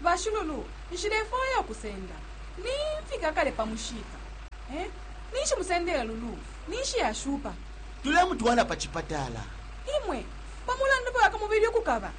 Bashululu, nshilefwaya ukusenda. Nimfika kale pa mushiika. Eh? Ninshi musendele Lulu? Ninshi yashupa? Tulemutwala pa cipatala. Imwe, pa mulandu fye wa kamubili ukukaba?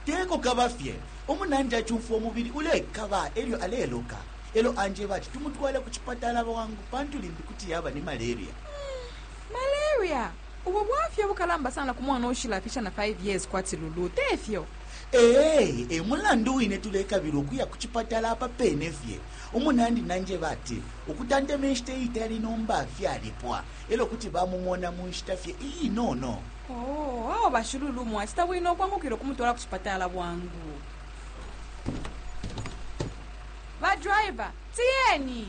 Teko kaba fye. Umunandi acumfwa umubili ulekaba elyo aleloka. Elyo anjeba ati tumutwale ku cipatala bwangu pantu limbi kuti yaba ni malaria. Hmm. Malaria? Ubu bwafya bukalamba sana ku mwana uushilafisha na 5 years kwati Lulu, te fyo? Ee, e mulandu wine tulekabila ukuya ku cipatala apa pene fye. Umunandi nanjeba ati ukutanteme nshita iitali nomba fyalipwa e lyo kuti bamumona mu nshita fye iinono. Oo, awe ba Shululu mwacita bwino ukwangukila ukumutwala ku cipatala bwangu. Ba driver, tiyeni!